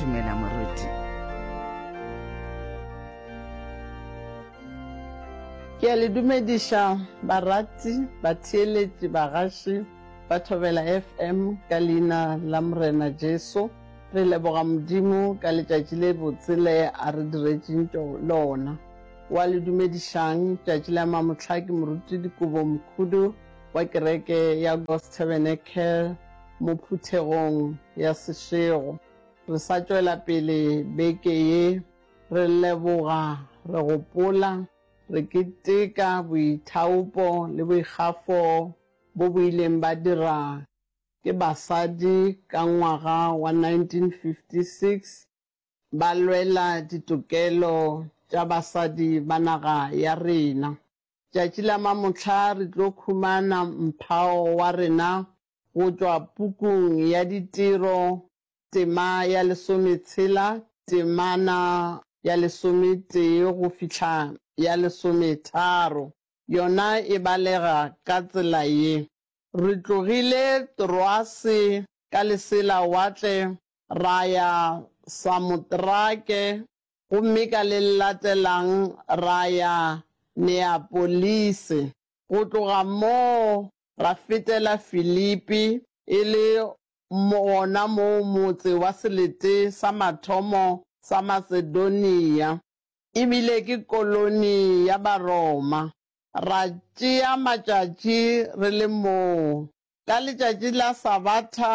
Dumela moruti. Ke a le dumediša barati, batheeletši, bagaši ba Thobela FM ka Leina la Morena Jesu. Re leboga Modimo ka letšatši le botse le a re diretšeng tšo lona. Wa le dumedišang tšatši la mamohla ke Moruti Dikobo Mokhudu wa kereke ya God's Tabernacle mo phuthegong ya sešego. Re sa tšwela pele beke ye, re leboga, re gopola, re keteka boithaopo le boikgafo bo bo ileng ba dira ke basadi ka ngwaga wa 1956 ba lwela ditokelo tša basadi ba naga ya rena. Tšatši la mamohla re tlo khumana mphao wa rena go tšwa pukung ya Ditiro, tema ya lesometshela, temana ya lesometee go fihla ya lesometharo, yona e balega ka tsela ye. Re tlogile Troase ka leselawatle ra ya Samotrake gomme ka le latelang ra ya Neapolise. Go tloga moo ra fetela Filipi, e le gona moo motse wa selete sa mathomo sa Masedonia, e bile ke koloni ya Baroma. Ra tšea matšatši re le moo. Ka letšatši la Sabatha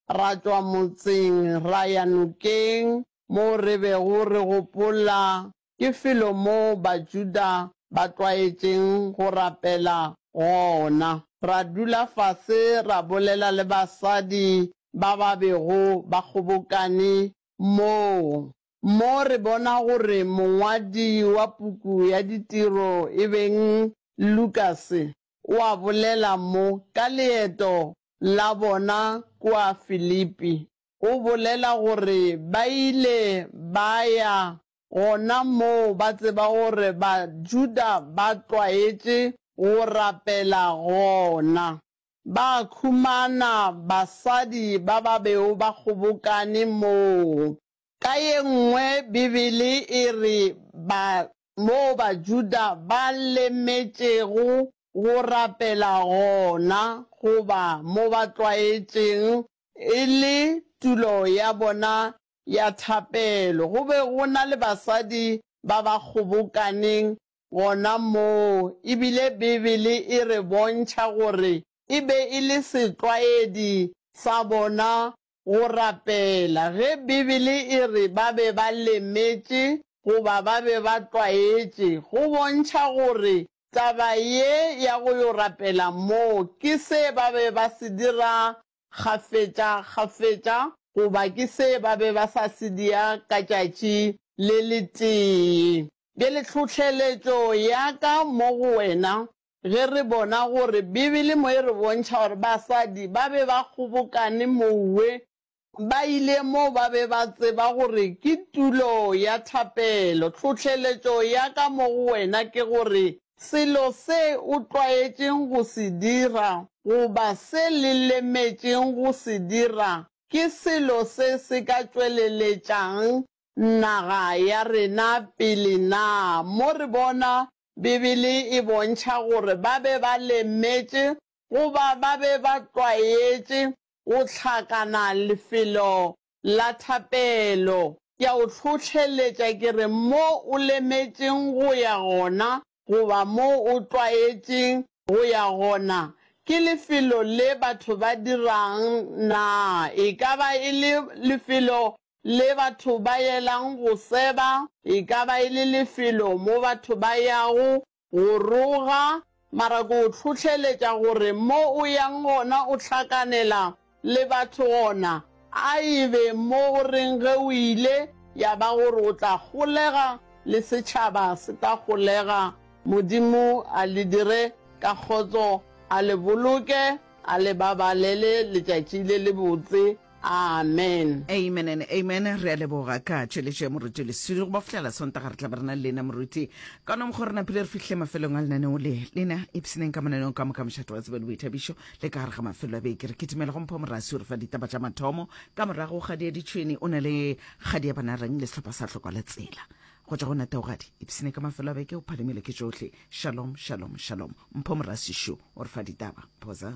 ra tšwa motseng ra ya nokeng moo re bego re gopola ke felo moo Bajuda ba tlwaetšeng go rapela gona. Ra dula fase ra bolela le basadi ba ba bego ba kgobokane moo. Mo re bona gore mongwadi wa puku ya Ditiro e beng Lukase o a bolela mo ka leeto la bona kua Filipi. O bolela gore ba ile ba ya gona moo ba tseba gore Bajuda ba tlwaetše go rapela gona. Ba humana basadi ba ba bego ba kgobokane moo. Ka ye nngwe Bibele e re ba moo Bajuda ba lemetšego go rapela gona goba mo ba tlwaetšeng e le tulo ya bona ya thapelo. Go be go na le basadi ba ba kgobokaneng gona moo, e bile Bibele e re bontšha gore e be e le setlwaedi sa bona go rapela. Ge Bibele e re ba be ba lemetše goba ba be ba tlwaetše, go bontšha gore taba ye ya go yo rapela moo ke se ba be ba se dira kgafetša kgafetša, goba ke se ba be ba sa se dia ka tšatši le letee. Bjale tlhohleletšo ya ka mo go wena, ge re bona gore Bibele mo e re bontšha gore basadi ba be ba kgobokane mowe, ba ile moo ba be ba tseba gore ke tulo ya thapelo, tlhohleletšo ya ka mo go wena ke gore selo se o tlwaetšeng go se dira goba se le lemetšeng go se dira ke selo se se ka tšweleletšang naga ya rena pele na? Mo re bona Bibele e bontšha gore ba be ba lemetše goba ba be ba tlwaetše go hlakana lefelo la thapelo. Ke a o hlohleletša ke re mo o lemetšeng go ya gona goba mo o tlwaetšeng go ya gona, ke lefelo le batho ba dirang na? E ka ba e le lefelo le batho ba yelang go seba, e ka ba e le lefelo mo batho ba yago Go roga, mara ke o hlohleletša gore mo o yang gona o hlakanela le batho gona, a e be mo o reng ge o ile ya ba gore o tla golega le setšhaba se tla golega, Modimo a le dire ka kgotso, a le boloke, a le babalele letšatši le lebotse. Amen. Amen and amen. Re a leboga ka tšweletšo ya moruti leswiri go ba fihlela sontaga re tla ba re na le lena moruti ka nomgo re napile re fihle mafelong a lenaneo le lena ipseneng ka mananeo ka moka mošato wa tsebe le boithabišo le ka gare ga mafelo a beke re kitimela go mpho morasi o re fa ditaba tša mathomo ka morago kgadi ya ditšhwene o na le kgadi ya banareng le sehlopha sa tlhokwa la tsela go tša go nataogadi ipsene ka mafelo a beke o phalemile ke tšohle shalom shalom shalom mpho morasi šo o re fa ditaba phosa